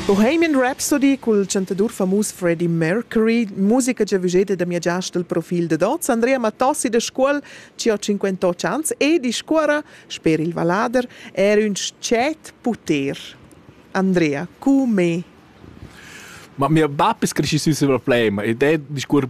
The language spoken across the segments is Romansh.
Bohemian Rhapsody cul chantadur famus Freddie Mercury, musica già vugeda da mia giast del profil dad oz, Andrea Mattossi da Scuol, ci ho 58 ans e discuora, sper il vallader, er ün scet puter. Andrea, cu me? Ma mio bap es cresci sü sül problema ed è discuor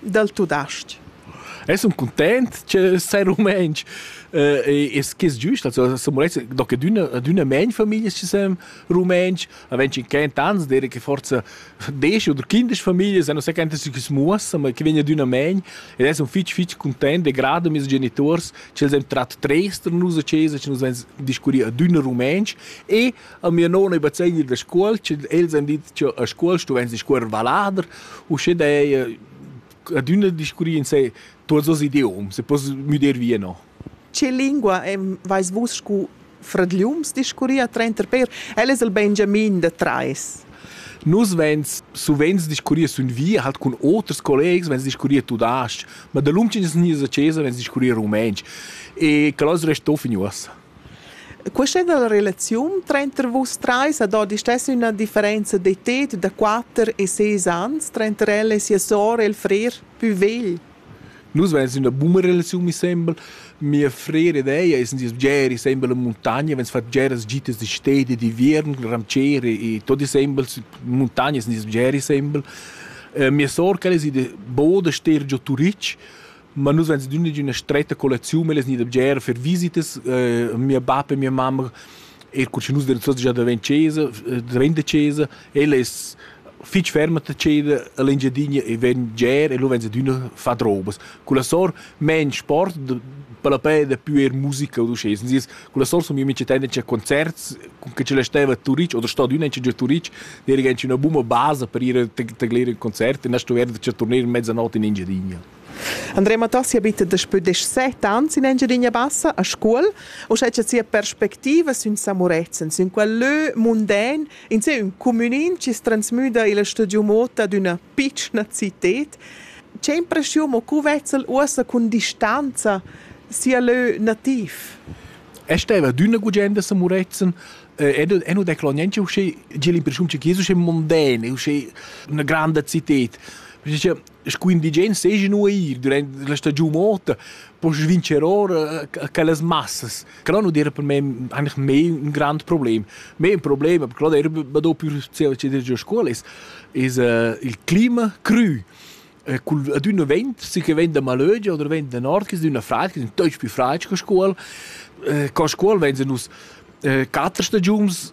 dal tudestg. Es un content che sei rumentsch eh, es che es giust also so molest do che d'una d'una men famiglia ci sem rumentsch a wenn ci kent ans dire che forza desch oder kindisch famiglia san se kent si smuassa ma che vegna d'una men ed es un fitch fitch content de grado mis genitors che sem trat trester nus a chesa che nus vens discurri a d'una rumentsch e A mia nona ei bazegner da scuol, sche els han dit che a scuol stuevan discuorer vallader, uschè da ei adüna discurrir in sé tuots dos idioms e poss müder via no. Che lingua vais vus scu fradgliums discurrir trenter per? El es il Benjamin da trais. Nus vens suvent discurrir sun via halt cun oters collegs, vens discurrir tudas-ch, ma da lunch in gnisa chesa vens discurrir rumentsch. E que as resta fin uossa. Questa è la relaziun tranter vus trais ad hoz istess üna differenza d'età da quatter e ses ans tranter ella e sia sour e il frer pü vegl. Nus vegns üna buna relaziun mi sembel. Mia frera ed ella sun sieus bgeri sembel in muntagna, vegns fat bgeras gitas di stedi e d'inviern cul ramcier e tot e sembel in muntagna sun sieus bgeri sembel. Mia sour quella es ida bod a ster giò Turitg ma nus veins dunna d'üna stretta collecziun, ellas gnida bger fer visitas, eh, mia bap e mia mamma, er cur cha nus deven tuots già da ven chesa, eh, drenda chesa, ella es fich ferma da ceder a l'Engiadina e ven bger e lu veins adüna fat robas. Con la sor main sport, per la pè dapü eir musica od uschè. Sens dis, con la sor sun mia mincha tendenza a concerts, con che ce la steva a Turic o da sta adüna anche già a Turic, era anche üna buna basa per ir a taglir il concert e na stuver da turner in mezzanotte in Engiadina. Andrea Matassi abita daspö deschset ans in Engiadina Bassa a Scuol, uschè cha sia perspectiva sün Samurezen, sün quel lö munden, in sé ün cumünin chi's transmüda illa studiu mot ad üna pitschna cited, che impreschiun o cu vezza'l uossa cun distanza sia lö nativ? E steva adüna gugent a Samurezen ed e nu declaro niente uschè, tg'el impreschiun cha chi es uschè munden, uschè üna granda cited. Perche sco indigens seigi nu eir durant la stagiun ota poss vincer ora eh, quellas massas che non dir per me eigentlich mehr ein grand problem mehr ein problem aber gerade er do più der scuola ist ist uh, il clima cru eh, col ad un vent si che venda malögia oder venda nord che d'una freit che sind deutsch più freit che scuol eh, con scuol wenn sie nus eh, quattro stagiuns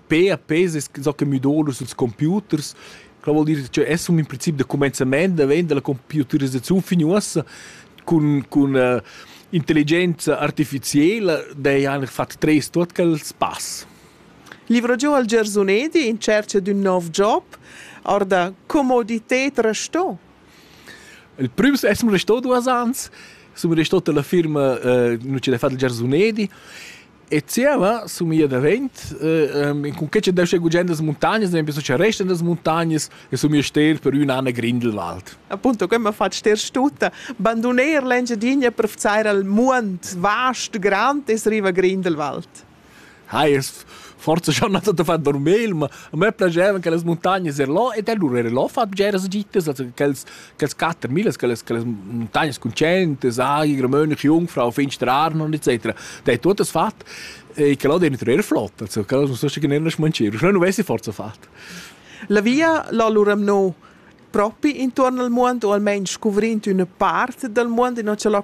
per pes es so che müdolus ils computers quella vuol dir che es un in princip da comenzament da vend dalla computerizzaziun fin uossa cun cun uh, intelligenza artificiela dei han fat tres tuot quels pass. Livro giù al Gersunedi in cerca d'un nov job, orda comodité resto. Il primo è som resto duas ans, som resto della firma uh, non c'è da fare il Gersunedi E zieva sumia davent, ehm, cun que cha deu stai gugent las muntagnas, ad exaimpel scha restan las muntagnas e sumia ster per ün an a Grindelwald. Appunto, que m'ha fat ster stutta. Banduner l'Engiadina per vzar al muond vast, grand e riva Grindelwald. Hai, es forse schon nato da far dormir, ma a me piaceva che las muntagnas er là ed allura era là fat bgeras gitas, also che els Quels quatter millas, quelles, quelles montagnas concentes, agli, romönische Jungfrau, finstere Arnon, etc. Der hat das fat. E che l'ho dentro er flott, also che l'ho so che ne non smancir, non avessi forza fat. La via l'allora no propi intorno al mondo o almeno scoprendo una parte del mondo e non ce l'ho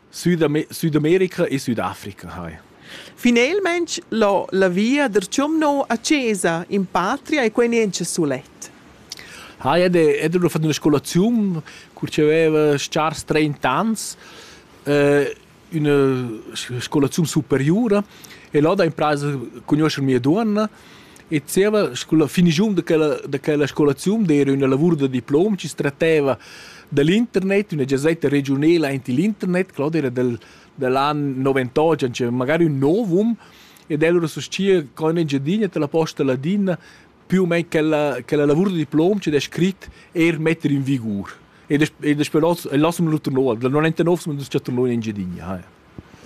Südamerica e Südafrica hai. Finelmaing l'ho la via der Chomno a Chesa in patria e quai niencha sulet. Ha, ed è da fat üna scolaziun cur chi aveva schars 30 ans, üna scolaziun superiura e là da impraisa cugnuoscher mia duonna E zieva scola finigiun da quella, da quella scolaziun d'era üna lavur da diplom chi stratteva da l'internet, üna giazetta regiunela aint il internet, Claudia era del, dell an 98, c'è magari ün novum, ed el ora sostia co in Engiadina te la posta ladina più o meno quella, quella lavur da diplom che è scrit er mettere in vigur. E das, e das però lassam l'altro nov, dal 99 siamo andati a Tornò in Engiadina.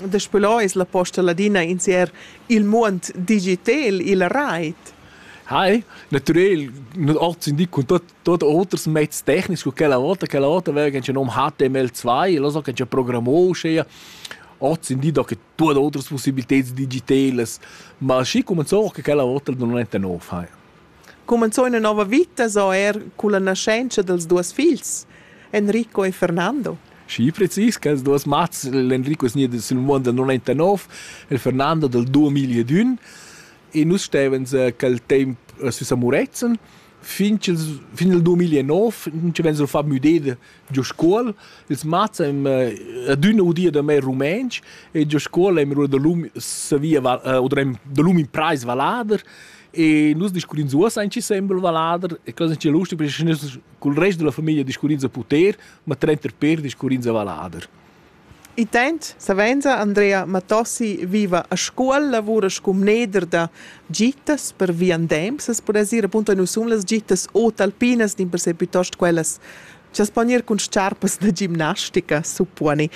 Daspö là es la posta ladina insier il muond digitel illa rait. Hei, natürel, nos Ort sind nicht cun tot tot oters mezs technics, cu quella vota, quella vota vegen schon um HTML2, lo so che già programmò schea. Ort sind die da che tuot oters possibiltäts digitelas, ma schi cominciò che quella vota non è nov, hei. Cumenzò ina nova vita sco er culla nascenzia dels duos figls, Enrico e Fernando. Schi precis quels duos mats, l'Enrico snia sül muond dal 99, il Fernando dal 2001 e nus stevans quel temp sü a Murezzan fin ch'ils fin il 2009 nun ci vegn a far müdeir giu scuol. Ils mats han adüna udia da me rumentsch e giu scuol haben wir da lum savia oder haben da lum imprais vallader e nus discurrins uossa in sembel vallader e cosa che lustig perché nus cul rest della famiglia discurrins a puter, ma trenter per discurrins a vallader. Intant savenza Andrea Matossi viva a Scuol, lavura sco mneder da gittas per viandems. As pudess ir appunto nus sun las gittas o talpinas, dimpersè piuttost quellas cha as pon ir cun s-charpas da gimnastica, supponi.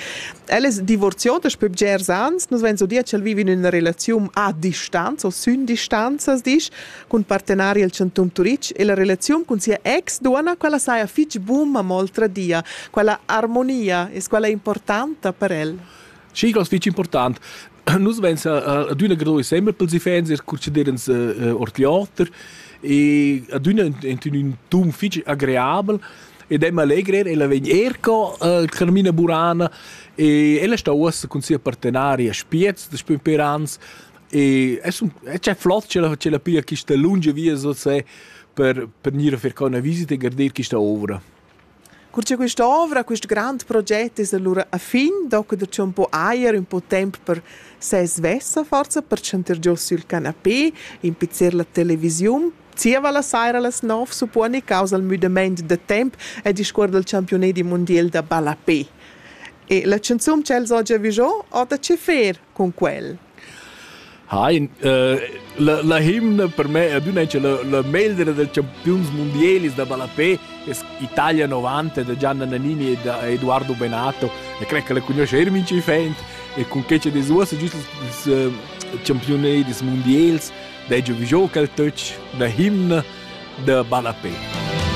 El es divorzià daspö bgers ans, nus vains udia ch'el vivi in üna relaziun a distanza o sün distanza, as disch. cun partenari el Chantum Turitg e la relaziun cun sia ex duonna, quella saja fich buna, ma oltradia, quella armonia es quella importanta per el. Sì, das fich important. Nus vens adüna gro insembel pels iffaints e conceder ins ord l'oter e adüna in ün ton fich agreabel ed è allegrer, ella vegn er co uh, Carmina Burana e ella sta uossa cun sia partenaria Spiez, da Spimperans, E es un e c'è flot c'è la c'è la pia quista lunga via so se per per gnir a fer co una visita e garder quista ovra. Cur cha questa ovra, quest grand proget es allura a fin, docu da c'è un po' ajer, un po' temp per se svessa forza, per chanter giò sul canapé, impizzer la televisiun, zieva la saira a las 9 supponi causa il müdament de temp e discuor del championet di mondial da ballapé. E la chanzun ch'els ho già vigiò, ho da che fer con quel? Ha, la, la himna per me è adüna che la, la meglra da campiuns mundialis da ballapè es Italia 90 da Gianna Nannini e da Eduardo Benato e cre che la conosce er min ci fent e con che ce desuosa giust ils uh, campionadis mundials da jo vi gioca al touch da himna da ballapè